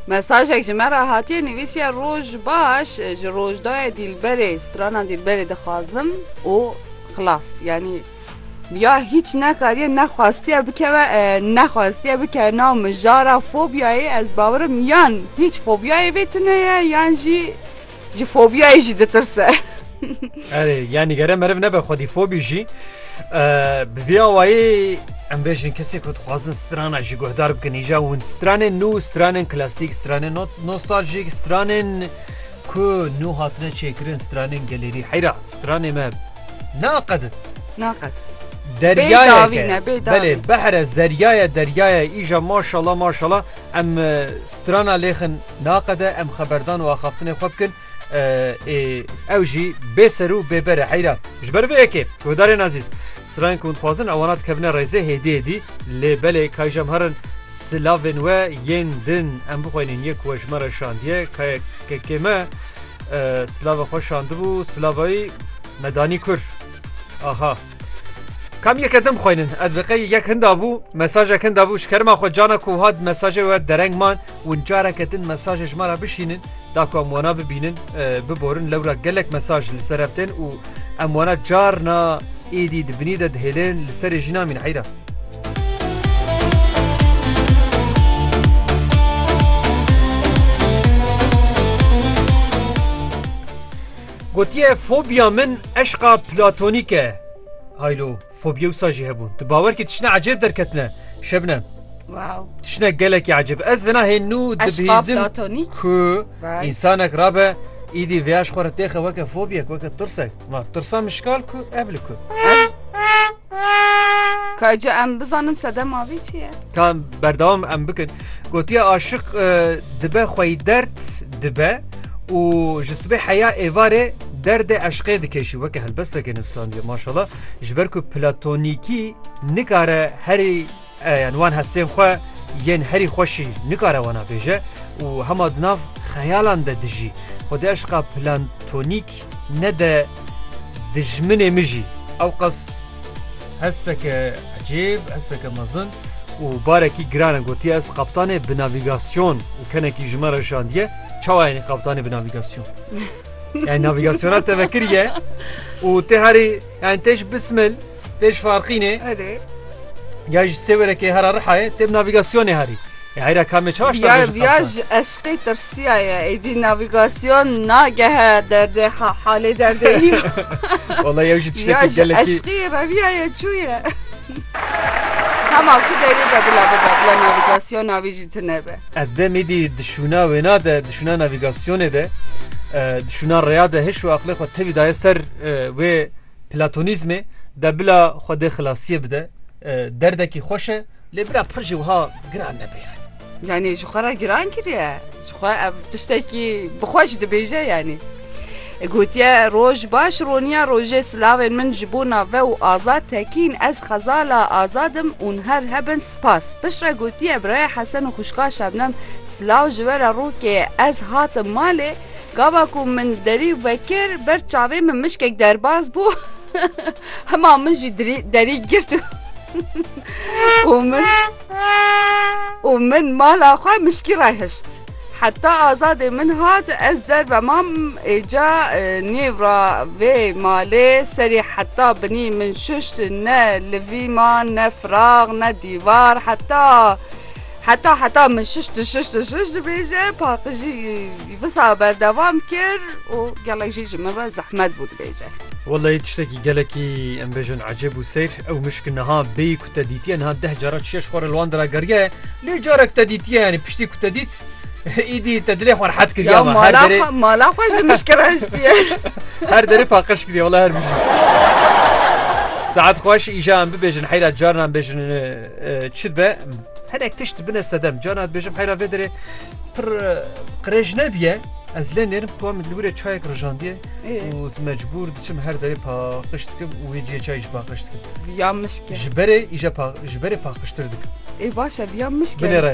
Mesajek ji me re hatiye nivîsiye roj baş ji rojdayê dîlberê strana dîlberê dixwazim û xilas yanî ya hiç nekariye nexwastiye bikeve nexwastiye bike nav mijara fobyayê ez bawirim yan hiç fobyayê vê tuneye yan jî Ji fobiyayê jî ditirse. Erê yanî gere meriv nebe xwedî fobî jî bi vê awayê em bêjin kesê ku dixwazin strana jî guhdar bikin îja hûn stranên nû stranên klasîk stranên nostaljîk stranên ku nû hatine çêkirin stranên gelêrî heyra stranê me naqedin naqed deryayê belê behre zeryayê deryayê îja maşala maşala Em strana lêxin naqede em xeberdan û axaftinê xwe bikin ê ew jî bê ser û bê bere heyra ji ber vê yekê guhdarên ezîz stranên ku hûn dixwazin ewana dikevine rêzê hêdî hêdî lê belê kayê jem herin silavên we yên din em bixwînin yê ku we ji me re şandiye kayekekê me silava xwe şandibû silavayî me danî kur aha. Kam yeke dim xweynin ez bi qey yek hinda bû mesajek hinda bû ji kerima xwe cana ku hat mesajê we dereng man win careke din mesajê ji me re bişînin da ku em wana bibînin biborin lewra gelek mesaj li ser ev tên û em wana carna êdî di binî de dihêlin li serê jî namîn heyra. Gotiye fobiya min eşqa platonîk e. Hay lo, fobiya wisa jî hebûn. Tu bawer kî tiştine ecêb derketine Şebnem. Wow. Tiştine gelekî ecêb. Ez vena hê nû dibihîzim ku însanek rabe îdî vêya ji xwe re têxe weke fobyek, weke tirsek. Ma tirsa min şikal ku ev li ku. Ka ca em bizanin sedema vê çi ye? Ka em berdewam em bikin. Gotiye aşiq e, dibe xweyî derd dibe û ji sibê heya êvarê derdê eşqê dikeşî weke helbesteke nivsandiye maşala ji ber ku platonîkî nikare herî e, yan wan hestên xwe yên herî xweşî nikare wana bêje û hema di nav xeyalan de dijî. Xwedî eşqa platonîk Ne de dijminê min jî ewqas hesteke ecêb, hesteke mezin û barekî giran e. Gotiye ez qaptanê bi navîgasyon û kenekî ji min re şandiye çawa yanî qaptanê bi navîgasyon. Yani navigasyona tevekiriye û tê herî yani tê ji bismil Têj farqînê. Erê. Ya ji sêwerekê hera rihayê têb navîgasyonê herî. Eyra kamê çaş da Viyaj viyaj eşqê tirsiya ye. Êdî navîgasyon nagehe derdê halê derdê yî. Wala yew jî tiştekî gelekî. Eşqî reviya ye çû ye. Hema ku derî be bila bibe bila navîgasyon navî jî tune be. Ev dem êdî dişûna wêna de dişûna navîgasyonê de dişûna reya de hiş û aqlê xwe tevî daye ser wê Platonîzmê de bila Xwedê xilasiyê bide derdekî xweş e lê bira pir jî wiha giran nebe yanî. Yanî ji xwe re giran kiriye. Ji xwe ev tiştekî bi xwe jî dibêje yanî. Gotiye roj baş roniya rojê silavên min ji bo nave û azad tekîn ez xezala azadim û niher hebin spas. Piştre gotiye birayê Hesen û xwişka Şebnem silav ji we re rokê ez hatim malê Gava ku min derî vekir ber çavê min mişkek derbas bû hema min jî derî girt û min û min mala xwe mişkî re hişt. Heta azadê min hat ez derve mam êca e, nêv ra vê malê serê heta binî min şişt ne li vî ma ne firax ne dîvar heta heta heta min şişt şişt şişt dibêje paqijî Wisa berdewam kir û gelek jî ji min re zehmet bû dibêje. Wellahî tiştekî gelekî em bêjin ecêb û seyr. Ew mişk niha bêyî ku te dîtiye niha deh cara çişeş xwe re li wan de ra geriye. Lê carek te dîtiye yanî piştî ku te dît îdî te dilê xwe rehet kiriye. Ya mala xwe mala xwe ji mişk re hiştiye. Her derê paqij kiriye wellahî her bijî. Saet xweş îja em bibêjin heyra carna em bêjin çi dibe hinek tişt bine sedem carna dibêjim heyra vê derê Pir qirêj nebiye. Ez lê nêrim ku min li wîrê çayek rijandiye û ez mecbûr diçim her derê paqij dikim û wê ciyê çayê jî paqij dikim. Viya mişke. Ji berê îje ji berê paqijtir dikim. Ê baş e viya mişke. Binêre.